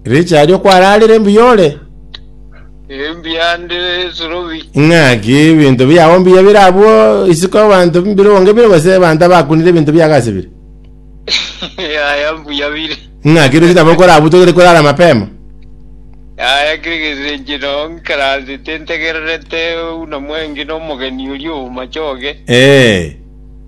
Richard okwararire mbuya ore? Embuya ndi Surubi. Ng'aki ebinto biao mbuya bire abwo isiko abanto mbire onge bire gose abanto abakunire ebinto biago ase bire? Yaya mbuya bire. Ng'aki rero chitaba okora abwo togere korara mapema. Yaya kire gesenche no nkaransete ntegererete buna mwengi nomogeni oria omache oge. Eh.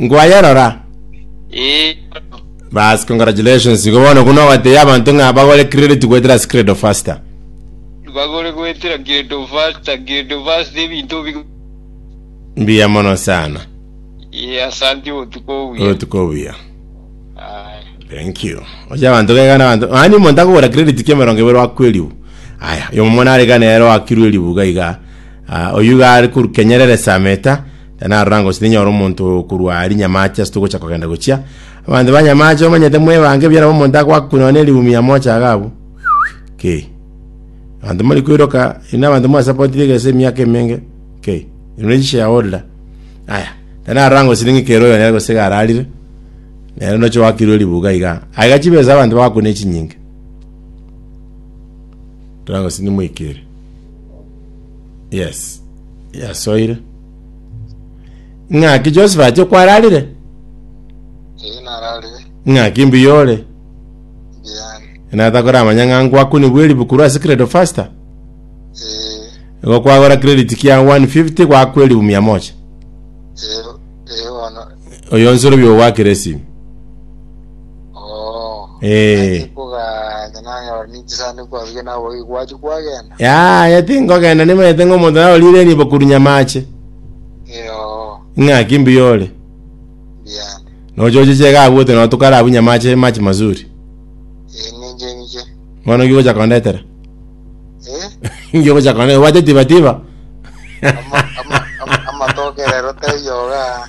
Ngwayerora? Ee, bono. Bas, congratulations. Igo bono buna ogotebia abanto ng'a bagore credit goetera ase Credo Faster. Bagore goetera Credo Faster, Credo Faster ebinto bi... Mbuya mono sana. Ee, asante obotuko obuya. Obotuko obuya. Aye. Thank you. Ocha abantu kegana abantu. Mani omonto akogora credit kia emerongo ebere wakwa eribu. Aya, oyo mwana arekana ero wakirwe eribu gaiga. Ah, oyu ga ari koru kenyerere sameta. Na narora ngose tinyora omonto korwa aria nyamache ase togocha kogenda gochia. Abanto ba nyamache bamanyete mwebange ebiara omonto agoaka koinwa ne rihumi ya mochaga abwo. K. Abanto mori koiroka, inwe abanto mwasapoti tiga ase emiaka emenge. K. Inwe ne shareholder. Aya. Na narora ngose ning'e kera oyo nere gose iga ararire. Nere noche oakirwe ribuga iga. Aiga chibesa abanto bagakwa ne chinyinga. Tara ngose nimoikire. yes yasoire ng'aki joseph ache kwararire Eye narare ng'aki mbuya ore Diane. natakora amanya ng'a ngwakuni bweri bukuru ase credo faster Eh, igo kwagora credit kia 150 gwakwa eribu mia moja eh, eh, bono oyo nsoro bio gwakire esimi Oo. Eh. Nache koganya nanyora ninchisaanire kwarugia nabo oyi gwachi kwagenda. yaya tingogenda nimanyete ng'a omonto naro rire nibo korwa nyamache Yoo. ng'aki mbuya ore Biyane. nochochiche iga abwo ote notukara abwo nyamache machi mazuri Ee ninche ninche. bono ki ogocha kondetera Eh? ngi ogocha kondetera obwate tiba tiba Ama- ama- ama- Amatoke rero taiyoga.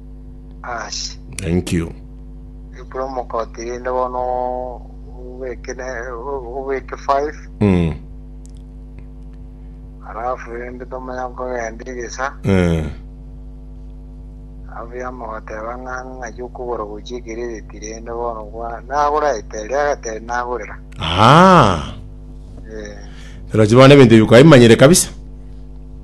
Aase. Thank you. Promo code rinde bono obeke ne obeke 5 Mm. alafu rinde tomanya kogenda egesa Eh. alafu yamogoteba ng'a ng'achi okogora gochia ekerereti rinde bono kwa nagora eteri agateri nagorera Ah. eh Rochi bono ebinto bikaimanyire kabisa.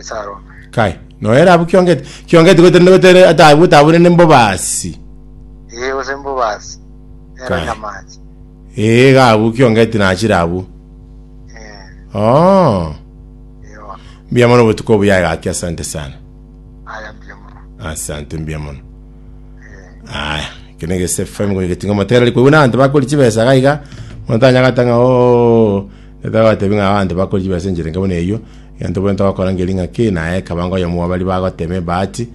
Esarome. Kai, noere abwo kiongete, kiongete gotenena gotere atabu gotabure ne mbobasi. Ee, gose mbobasi. Nero Kai. nyamache. Ee, iga abwo kiongete nachire abwo. Eh, Oh, eh, bono. mbuya mono obotuko obuya egaki, asante sana. Aya mbuya mono. Asante mbuya mono. Eh, Aya, kene gese FM gogetinga motera liko una antu bakori chibesa gaiga. Montanya gatanga o Na togotebia ng'a abanto bakore chibiacha enchera enke buna eyio, egento bwenerete gokora nge ring'aki, na aye ekabanga oyomo bwa baria bagotema ebahati,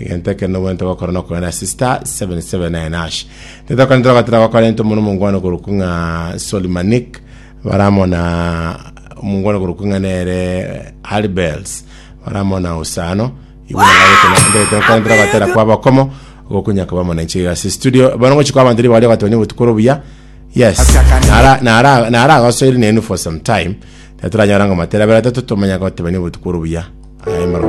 egento ekero nobwenerete gokora nokogenda ase star 779 hash. Titokorente togotera gwakorente omonto omongwana okorokwa ng'a Solly Manick, bare amo na omongwana okorokwa ng'a nere Harry Bells, bare amo na Usano, igo tokorente togotera kwa Bakomo, ogokunya koba amo nainche iga ase studio. Bono ngochi kwa abanto ribaga ri'ogotonya obotuko ore obuya, Yes. Ase akande- Nara- nara- naragosoire nenu for some time. Natoranyora ng'omatere abere atato tomanya gotebania obotuko ore obuya. Aye, maro-